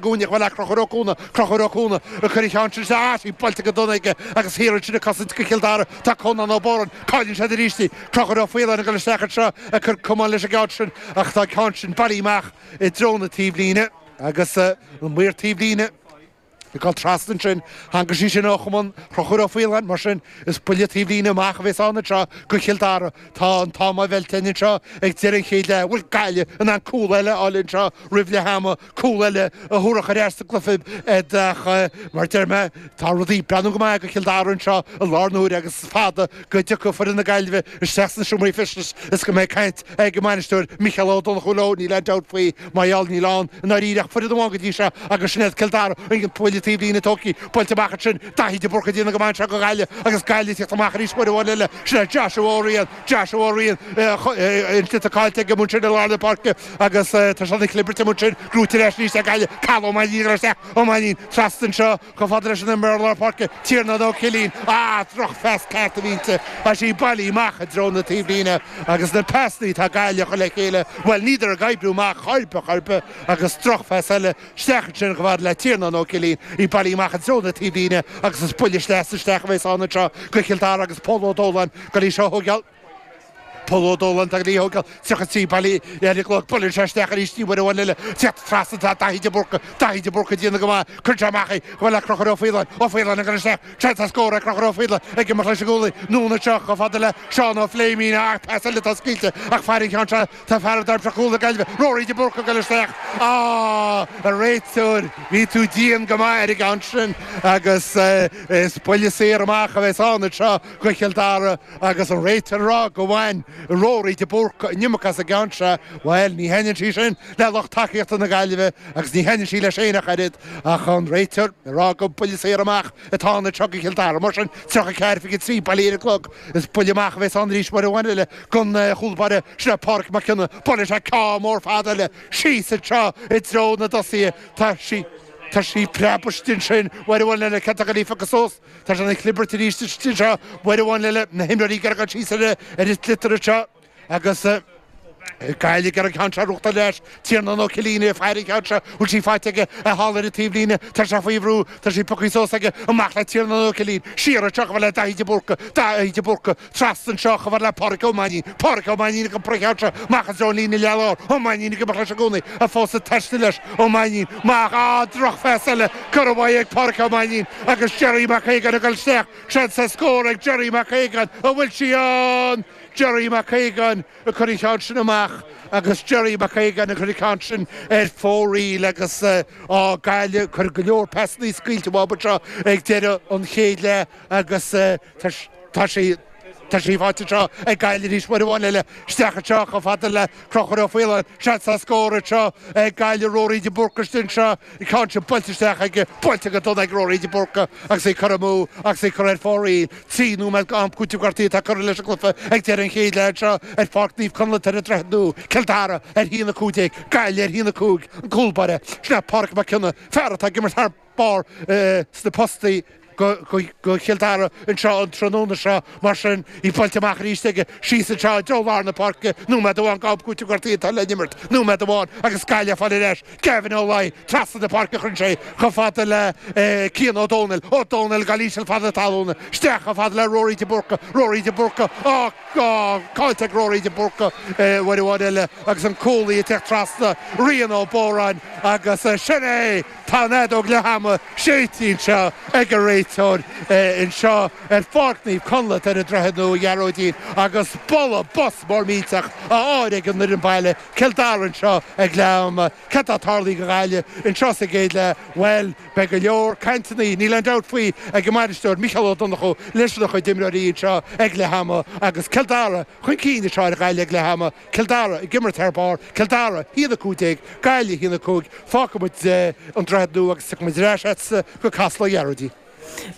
gcúinne a bhfuil Crochúr Ó Cuana, Crochúr Ó Cuana ag cur an cheann sin ar ais, í buailte go dona aige agus thiar ansin ag cosaint go Cill Dara tá Conán Ó Bóráin, cailleann siad arís í, Crochúr Ó Faoláin ag goil isteach anseo ag cur camán leis an gceann sin ach tá an ceann sin bailithe amach i dtreo na taobhlíne agus an maor taobhlíne ag dul trasna ansin, tháinig sí sin ó chamán Chrochúr Ó Faoláin, mar sin is buille taobhlíne amach a bhéas ann anseo go Chill Dara. Tá an t-am á mheilt linn anseo ag deireadh an chéad leath, bhfuil Gaillimh in ann cúl eile a fháil anseo roimh leath ama, cúl eile a thabharfadh ar ais sa gcluiche iad ach mar deir mé tá rudaí ag breathnú go maith go Cill Dara anseo i láthair na huaire agus is fada go dtiocfaidh foireann na Gaillimhe isteach sna seomraí feistis is go mbeidh caint ag a mbainisteoir Micheál Ó Donnchú leo níl aon dabht faoi mar gheall níl ann i ndáiríre ach foireann amháin go dtí seo agus sin iad Cill Dara an buille taobhlíne tógtha buailte amach ansin Daithí de Búrca ag déanamh go maith anseo go Ghaillimh agus Gaillimh ag teacht amach arís uair amháin eile sin é Joshua Ó Riain Joshua Ó Riain an sliotar caillte aige ansin i lár na páirce. Agus tá sé ina chlibirt amuigh ansin, gnóite ar ais arís ag Gaillimh, Cathal Ó Mainnín ag goil isteach, Ó Mainnín. Trasna anseo, chomh fada leis an imreoir lár páirce, Tiarnán Ó Cillín. Ah, drochphas ceart a bhí inti. Tá sí bailithe amach i dtreo na taobhlíne. Agus na pasannaí atá Gaillimh a chur le chéile, bhuel, níleadar ag oibriú amach chor ar bith chor ar bith. Agus drochphas eile. Isteach ansin, chomh fada le Tiarnán Ó Cillín, í bailithe amach i dtreo na taobhlíne. Agus is buille sleasa isteach a bheas ann anseo do Chill Dara agus Pól Ó Dúláin ag goil í seo a thógáil. Pól Ó Dúláin atá ag goil í a thógáil 33 bailithe ar an gclog. Buaileann sé isteach arís í uair amháin eile. Cé atá trasna? Tá Daithí de Búrca. Daithí de Búrca ag déanamh go maith. Cuireann sé amach é. Chomh fada le Crochúr Ó Faoláin. Ó Faoláin ag goil isteach. Seans ar scór ag Crochúr Ó Faoláin. Ag imeacht leis ón gcúlaí. Anonn anseo. Chomh fada le Seán Ó Pléimín. Ach pas eile atá scaoilte. Ach faireann Seán seo. Tá fear ag daimseach chúl na Gaillimhe. Ruairí de Búrca ag goil isteach. Á! A réiteoir, bhí tú dian go maith ar an gceann sin agus is buille saor amach a bheas ann anseo go Chill Dara. Agus an réiteoir ag rá gur bhain Ruairí de Búrca an iomarca as an gceann seo, bhuel, ní thaitnionn sí sin le lucht tacaíochta na Gaillimhe agus ní thaitnionn sí leis féin ach oiread, ach an réiteoir ag rá gur buille saor amach atá ann anseo go Cill Dara, mar sin, 34-23 bailithe ar an gclog, is buille amach a bheas ann arís uair amháin eile don chúl báire sin é Pádraic Mac Cionnaith, buailfidh sé ceann mór fada eile síos anseo i dtreo na dtosaithe, tá sí, tá sí ag preabadh istigh ansin uair amháin eile, cé atá ag goil í a phiocadh suas? Tá sé ina chlibirt arís istigh anseo, uair amháin eile na himreoirí ag gearradh síos ar ar an sliotar anseo agus Gaillimh ag iarraidh an cheann seo a rugtar leis, Tiarnán Ó Cillín ag faire an cheann seo, bhfuil sí faighte aige a shála ar an taobhlíne, tá sé faoi bhrú, tá sí pioctha suas aige, amach le Tiarnán Ó Cillín, siar anseo chomh fada le Daithí de Búrca, Daithí de Búrca, Trasna anseo, chomh fad le Pádraic Ó Mainín, Pádraic Ó Mainín ag iompar an cheann seo, amach anseo an líne leith lár, Ó Mainín ag imeacht leis i gcónaí, fós ag taisteal leis, Ó Mainín, maith, á, drochphas eile curtha uaidh ag Pádraic Ó Mainín, agus Gerry Mac Aogáin ag dul isteach, seans sa scór ag Gerry Mac Aogáin, an bhfuil sí ann? Gerry Mac Aogáin ag cur an cheann sin amach, agus Gerry Mac Aogáin ag cur an ceann sin ar fóraoil, agus, á, Gaillimh, ag cur go leor pasannaí scaoilte amú anseo ag deireadh an chéad leath, agus, Tá sí faighte anseo ag Gaillimh arís uair amháin eile. Isteach anseo, chomh fada le Conchúr Ó Faoláin. Seans sa scór anseo ag Gaillimh. Ruairí de Búrca istigh anseo. Ceann sin buailte isteach aige. Buailte go dona ag Ruairí de Búrca agus é curtha amú agus é curtha ar fóraoil. Trí nóiméad d'am cúiteamh gortaithe atá curtha leis an gcluiche ag deireadh an chéid leath anseo ar Pháirc Naomh Conlaith ar an Droichead Nua. Cill Dara ar a haon a 15, Gaillimh ar a haon a 5. An cúlbáire, Pádraig Mac Cionnaith, fear atá ag imirt thar barr sna postaí do Chill Dara anseo an tráthnóna seo, mar sin í buailte amach arís aige, síos anseo i dtreo lár na páirce, nóiméad amháin d'am cúiteamh gortaithe atá le n-imirt, nóiméad amháin agus Gaillimh á fáil ar ais, Gavin Ó Laoi trasna na páirce chuir sé chomh fada le Cian Ó Dónaill, Ó Dónaill ceann íseal fada talún, isteach chomh fada le Rory de Búrca, Rory de Búrca ach caillte ag Rory de Búrca uair amháin eile agus an cúlaí ag teacht trasna, Rian Ó Bodhráin agus sin é! Tá an fheadóg leath ama séidte anseo ag an réiteoir anseo ar Pháirc Naomh Conlath ar an Droichead Nua, Ghearóidín, agus bualadh bos mór millteach á fháil ag an fhoireann baile, Cill Dara, anseo ag leath ama. Céard atá tarlaithe do Ghaillimh anseo sa gcéad leath? Bhuel, beidh go leor cainteannaí, níl aon dabht faoi, ag an mbainisteoir, Micheál Ó Donnchú, leis a chuid imreoirí anseo ag leath ama agus Cill Dara chun cinn anseo ar Ghaillimh ag leath ama. Cill Dara ag imirt thar barr, Cill Dara, a haon a 15, Gaillimh, a haon a 5, Fágfaidh muid an Droichead Nua agus tiocfaidh muid ar ais go Casla a Ghearóidín.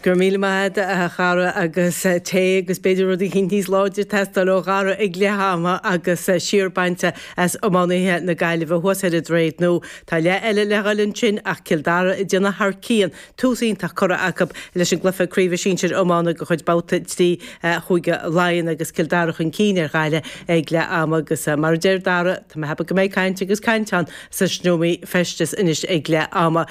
Go raibh míle maith agat, a Dhara, agus tae agus b'fhéidir rud éicint níos láidre ag teastáil ó Dhara ag leath ama agus siar bainte as iománaithe na Gaillimhe thuas ar an Droichead Nua. Tá leath eile le dhul ansin ach Cill Dara ag déanamh thar cionn tús iontach curtha acu leis an gcluiche craoibhe sinsir iomána de chuid Babhta 3 Chúige Laighean agus Cill Dara chun cinn ar Ghaillimh ag leath ama agus mar a deir Dara, tá mé ag ceapadh go mbeidh caint agus caint ann sna seomraí feisteas anois ag leath ama.